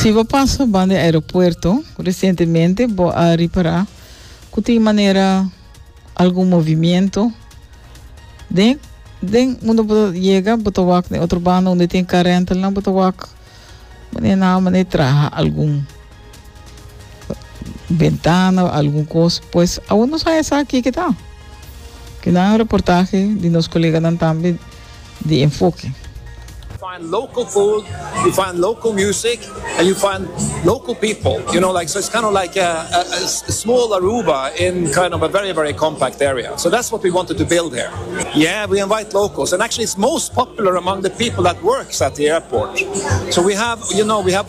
Si bo pasa ban di aeropuerto resientemente, bo a ripará ku tin manera algun movimiento den den unda bo yega, bo ta wak den otro banda unda tin kar rentalnan, bo ta wak mane nan mane traha algun bentana o algun kos pues awor nos haya sa kiki ta kina un reportahe di nos koleganan tambe di enfoke. find local food, you find local music and you find local people, you know like so it's kind of like a a small Aruba in kind of a very very compact area so that's what we wanted to build here. Yeah we invite locals and actually it's most popular among the people that works at the airport so we have you know we have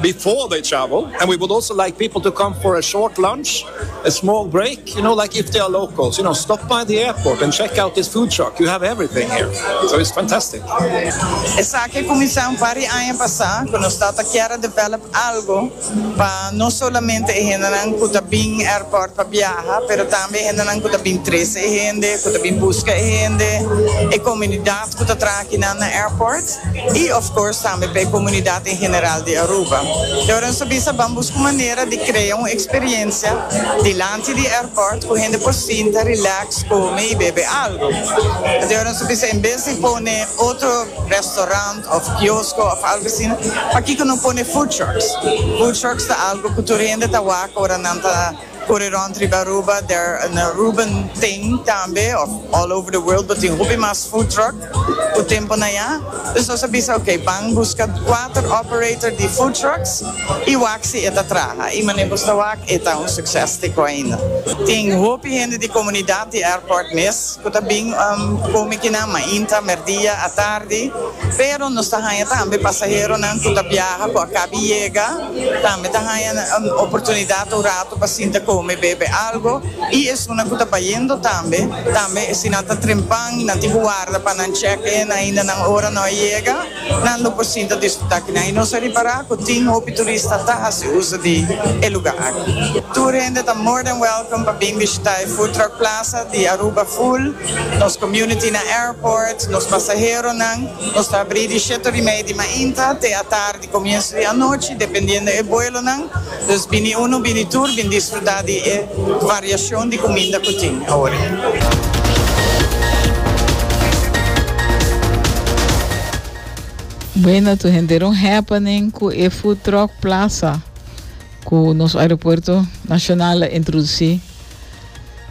Before they travel and we would also like people to come for a short lunch, a small break, you know like if they are locals, you know stop by the airport and check out this food truck, you have everything here, so it's fantastic. Esaki a cuminsa un par di aña pasa cu nos ta ta kier a develop algo pa no solamente e hendenan cu ta bin airport pa biaha pero tambe e hendenan cu ta bin trece e hende, cu ta bin busca e hende, e comunidad. cu ta traha akinan na airport y of course tambe pa e comunidad en general di Aruba. Y ora nos a bisa ban busca un manera di crea un experiencia dilanti di airport cu hende por sinta, relax, come y bebe algo. Enton ora nos a bisa en bes di pone otro restaurant of kiosco of algo asina, pakico no pone food trucks? Food trucks ta algo cu tur hende ta wak ora nan ta. Por e rond riba Aruba der an Aruban thing tambe of all over the world bo tin hopi mas food truck ku tempo na ya. Dus nos a bisa ok ban buska kuater operator di food trucks i wak si e ta traha i mane bo sta wak e ta un succes te ko ainda. Tin hopi hende di komunidat di airport mes ku ta bin kome kinan mainta, merdia, atardi pero nos ta haña tambe pasaheronan ku ta biaha ku a kabi yega. Tambe ta haña un oportunidad un rato pa sinta come y bebe algo y esunnan cu ta bayendo tambe, tambe si nan ta trempan y nan tin cu warda pa nan check in ainda nan ora no a yega, nan lo por sinta disfruta aki nan y nos a ripara cu tin hopi turista ta haci uso di e lugar aki. Tur hende ta more than welcome pa bin bishita e Food Truck Plaza di Aruba full, nos community na airport, nos pasaheronan, nos ta habri di shetorimei di mainta te atardi. E comienso di anochi dependiendo e vuelonan, dus bini uno bini tur bin disfruta di e variacion di cuminda cu tin awor. Buena tur henter un happening cu e food truck plaza cu nos aeropuerto nacional a introduci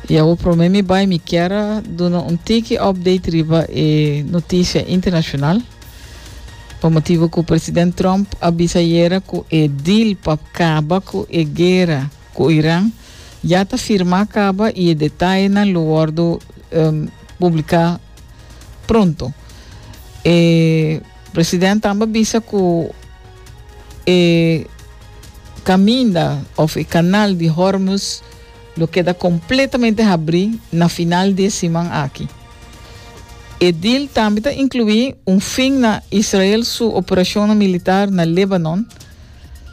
y awor prome mi bay mi kier a duna un tiki update riba e noticia internacional. Pa motibu cu president Trump a bisa ayera cu e deal pa caba cu e guera cu Iran ya ta firma caba y e detayenan lo wordo um, publica pronto. E president tambe bisa cu e caminda of e canal di Hormuz lo keda completamente habri na final di e siman aki. E deal tambe ta inclui un fin na Israel su operacionnan militar na Lebanon,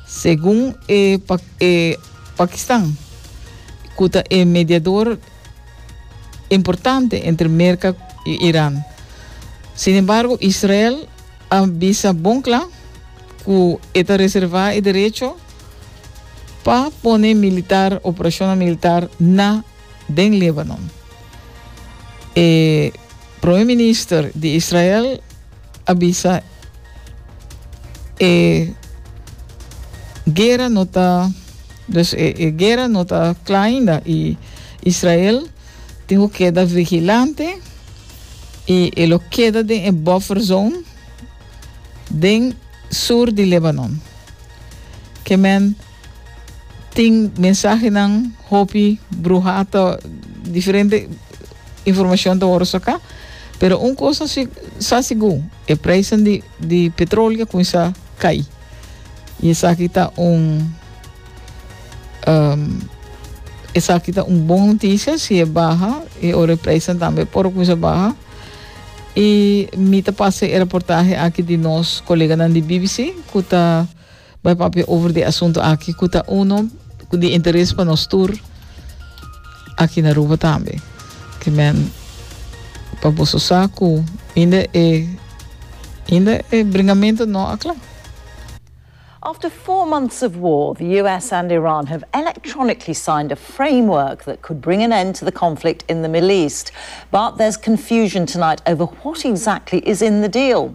segun e e Pakistan, cu ta e mediador importante entre Merca y Iran. Sin embargo, Israel a bisa bon cla cu e ta reserva e derecho pa pone militar operacionnan militar na den Lebanon. E Prome Minister di Israel a bisa e guera no ta dus e, e guera no ta kla ainda i Israel tin ku keda vigilante i e lo keda den e buffer zone den sur di Lebanon. Ke men Tin mensahenan hopi bruha ta diferente informacion ta worde saca pero un cosa si sa sigur e prijzen di di petroleo cuminsa cay y esaki ta un um esaki ta un bon noticia si e baha y ora e prijzen tambe por cuminsa baha y mi ta pasa e reportahe aki di nos coleganan di bbc cu ta Bo a papia over di e asuntu aki cu ta uno di interes pa nos tur aki na Aruba tambe. Ki men pa boso sa cu inda e inda e bringamento no a cla. After four months of war, the US and Iran have electronically signed a framework that could bring an end to the conflict in the Middle East. But there's confusion tonight over what exactly is in the deal.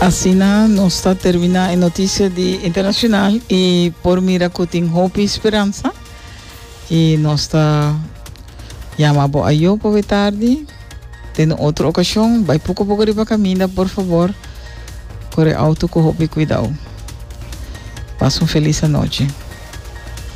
Asina nos ta termina e noticia di internacional y por mira cu tin hopi esperanza y nos ta llama bo ayo pa we tardi den un otro ocasion bay poco poco riba caminda por favor corre auto cu hopi cuidao pas un feliz anoche